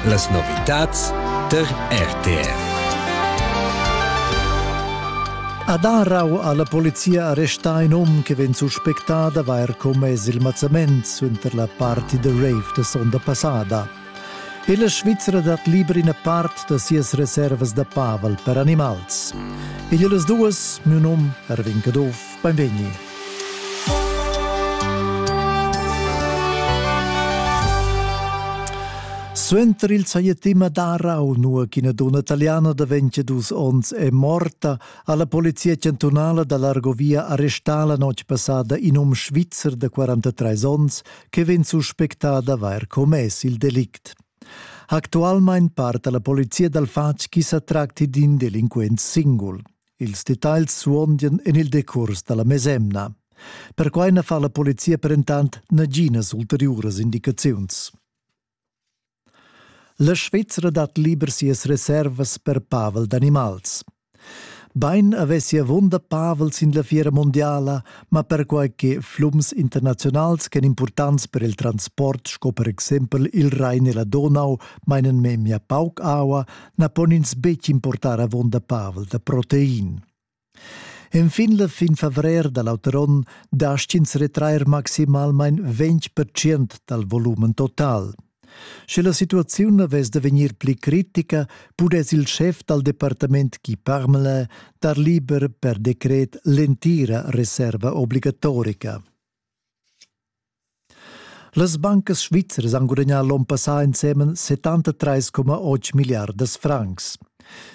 Las novitads tar RTR. Ad Arau ha la polizia arrestà in um che vegn suspectà d'avair commess il mazzament suenter la party da rave da sonda passada. E la Svizra dat liber ina part da sias reservas da pavel per animals. Egl las duas, miu num Erwin Caduff Beinvegni. Suenter il sajettima d'Arau, nua ch'ina dunna italiana da 22 onns è morta, ha la polizia chantunala da l'Argovia arrestà la notg passada in um svizzer da 43 onns che vegn suspectà d'avair commess il delict. Actualmain parta la polizia dal fatg ch'i sa tracti d'in delinquent singul. Ils detagls suondian en il decurs da la mesemna. Perquai na fa la polizia perentant naginas ulteriuras indicaziuns. La Svizra dat liber sias reservas per pavel d'animals. Bain avessi avunda Pavel sin la fiera mondiala, ma perquai che flums internazionals ch'èn impurtants per il transport sco per exempel il Rain e la Donau mainan memia pauc aua, na pon ins betg importar avonda Pavel da protein. Enfin la fin favrer da l'auter onn dastgins retrair maximalmain 20% dal volumen total. Sche la situaziun avess da vegnir pli critica, pudess il schef dal departament Guy Parmelin dar liber per decret l'entira reserva obligatorica. Las bancas svizras han gudagnà l'onn passà ensemen 73,8 milliardas francs.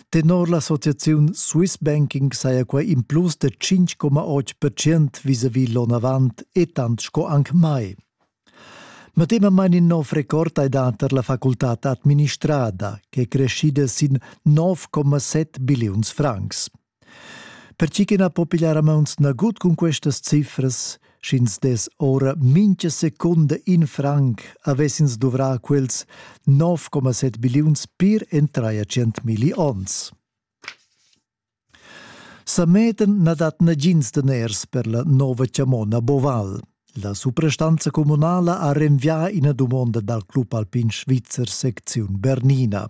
Tenor l'associaziun Swiss Banking saja quai in plus da 5,8 percent vis-à-vis l'onn avant e tant sco anc mai. Medemamain in nov record hai dà tar la facultad administrada, ch'è creschida sin 9,7 billiuns francs. Pertgi che na po pigliar a mauns nagut cun questas cifras, sch'ins dess ora mintga secunda in franc, avessins duvrà quels 9,7 billiuns pir en traia centmilli onns. Sametan na dat nagins daners per la nova chamona Boval. La suprastanza communala ha renvià ina dumonda dal Club Alpin Svizzer secziun Bernina.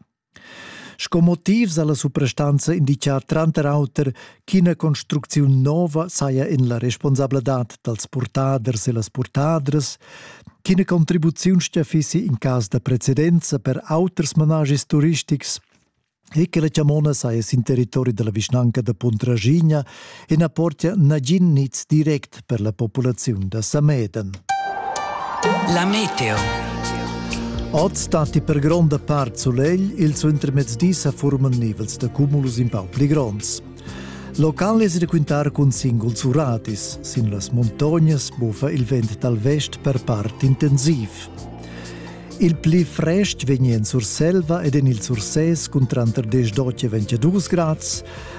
Sco motivs ha la suprastanza indicà tranter auter ch'ina construcziun nova saja en la responsabladad dals purtaders e las purtadras, ch'ina contribuziun stia fissi in cas da precedenza per auters managis turistics e che la chamona saja sin territori da la vischnanca da Puntraschigna e na portia nagin niz direct per la populaziun da Sameden. La meteo. Oz datti per gronda part sulegl, ils intermezzdis sa furman nivels da cumulus in pau pli gronds. Local es requintar cun singuls uradis. Sin las montognas buffa il vent dal vest per part intensiv. Il pli frest vegn en Surselva ed en il Sursès cun tranter 10 e 22 grads.